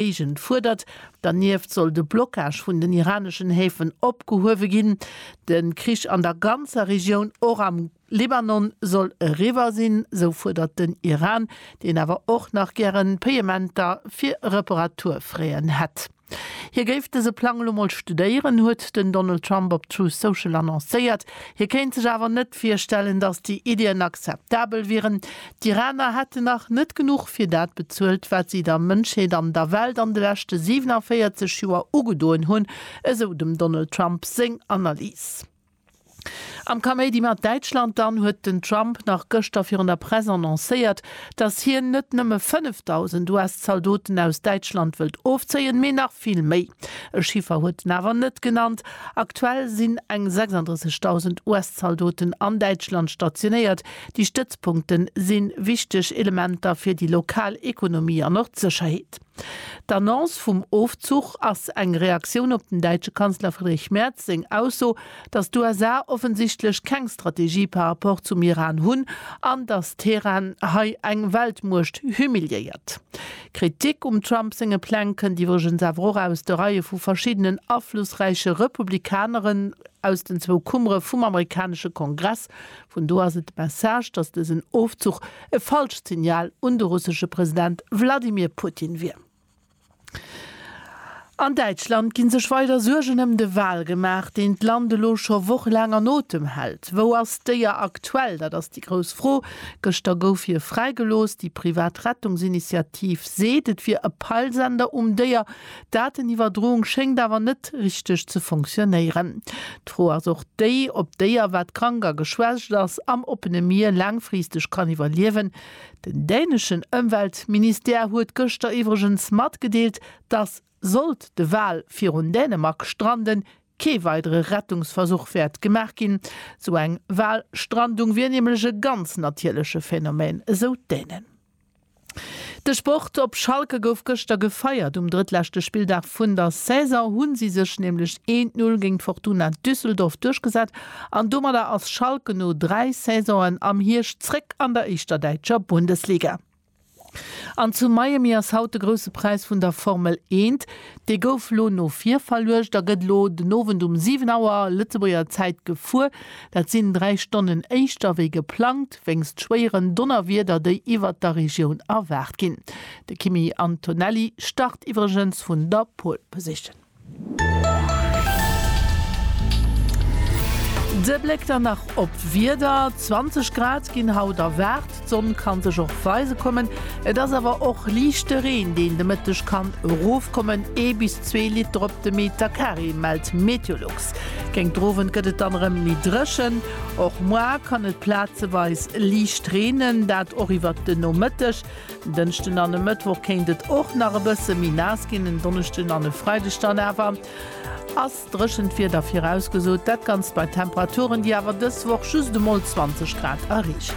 Géigend fuerdert. Dernieft soll de Blockage vun den iraneschen Häfen opgehuewe ginn. De Krich an der ganzer Regioun, och am Libanon, soll eriwwer sinn, sou fuerdert den Iran, deen awer och nach gären Payementer fir Reparaturfraien hätt. Hie géif dëse Plang elo mol studéieren, huet den Donald Trump op Truth Social annoncéiert. Hie kéint sech awer net virstellen, datt déi Iddien akzeptabel wieren. D'Iraner hätten nach net genuch fir dat bezuelt, wat si der Mënschheet an der Welt an de leschte 47 Joer ugedoen hunn, esou dem Donald Trump seng Analys. Am Kaméidi mat Däitschland dann huet den Trump nach gëschter virun der Press annoncéiert, datt hien net nëmme 5.000 US-Zaldoten aus Däitschland wëllt ofzéien, mee nach vill méi. E Chiffer huet en awer net genannt. Aktuell sinn eng 36.000 US-Zaldoten an Däitschland stationéiert. Déi Stëtzpunkte si wichteg Elementer fir déi lokal Ekonomie an och d'Sécherheet. D'Annonce vum Ofzuch ass eng Reaktioun op dem däitsche Kanzler Friedrich Merz seng Ausso, datt d'USA offensichtlech keng Strategie par rapport zum Iran hunn an datt Teheran hei eng Weltmuecht humiliéiert. Kritik um Trump senge Pläng kënnt iwwregens awer och aus de Reie vu verschiddenen aflussräiche Republikaneren aus den zwou Kummere vum amerikanesche Kongress, Vun do ass et de Message, datt dësen Ofzuch e falscht Signal un de russesche President Wladimir Putin wier. An Däitschland gi sech weider Suergen ëm de Wal gemaach, deen d'Land elo scho wochelaang an Otem hält. Wou ass d'Déier aktuell? Dat ass déi grouss Fro. Gëschter gouf hie fräigelooss. Déi privat Rettungsinitiativ seet, et wier e Peilsender um Déier. D'Dateniwwerdroung schéngt awer net richteg ze fonctionnéieren. D'Fro ass och déi, ob d'Déier, wat krank a geschwächt ass, am oppene Mier laangfristeg kann iwwerliewen. Den däneschen Ëmweltministère huet gëschter iwwregens matgedeelt, dass, sollt de Wal virun Dänemark stranden, kee weidere Rettungsversuch wäert gemaach ginn. Esou eng Walstrandung wier nämlech e ganz natierleche Phänomen, esou d'Dänen. De Sport op Schalke gouf gëschter gefeiert. Um drëttleschte Spilldag vun der Saison hu si sech nämlech een d'Null géint Fortuna Düsseldorf duerchgesat an domadder ass Schalke no dräi Saisonen am Hierscht zréck an der éischter däitscher Bundesliga. An zu Miami ass haut de grousse Präis vun der Formel eent. Dee gouf lo no vir verluecht a gëtt elo den Owend um 7 Auer Lëtzebuerger Zäit gefuer. Dat sinn dräi Stonnen éischter wéi geplangt. Frost wéinst schwéieren Donnerwieder, déi iwwert der Regioun erwaart ginn. De Kimi Antonelli start iwwregens vun der Pole Position. De Bléck dann nach op d'Wieder, 20 Grad ginn haut erwaart, d'Sonn kann sech och weise kommen. Et ass awer och liichte Reen, deen de Mëtteg kann erofkommen, ee bis zwee Liter op de Meter Carré, mellt Meteolux. Géingt Owend gëtt et dann erëm méi dréchen. Och muar kann et plazeweis liicht reenen, dat och iwwert de Nomëtteg. En Dënschden an e Mëttwoch kéint et och nach e bësse méi naass ginn, en Donneschden an e Freideg dann awer ass dréchent Wieder virausgesot, dat Ganzt bei Temperaturen, déi awer dës Woch just emol 20 Grad erreechen.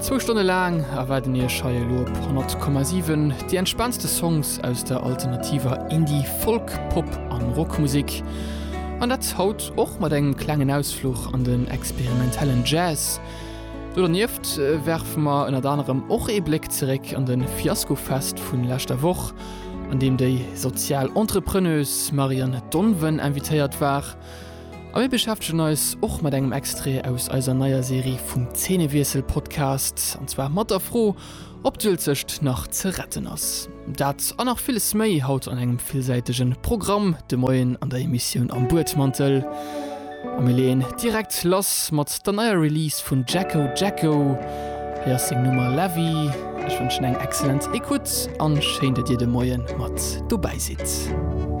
Zwou Stonne laang erwaarden iech hei elo op 100,7 déi entspaantste Songs aus der alternativer Indie-, Folk-, Pop a Rockmusek. An dat haut och mat engem klengen Ausfluch an den experimentellen Jazz. Do dernieft werfe mer ënnert anerem och ee Bléck zeréck an de Fiaskofest vun leschter Woch, an deem déi sozial Entrepreneuse Marianne Donven invitéiert war. A mir beschäftegen eis och mat engem Extrait aus eiser neier Serie vum Zeenewiessel-Podcast, an zwar mat der Fro, ob d'Uelzecht nach ze retten ass. Dat a nach villes méi haut an engem villsäitege Programm de Moien an der Emissioun Am Buedmantel. A mir leeën direkt lass mat der neier Release vun Jacko Jacko. Hei ass seng Nummer La Vie. Ech wënschen eng excellent Ecoute an schéin, datt Dir de Moien mat dobäi sidd.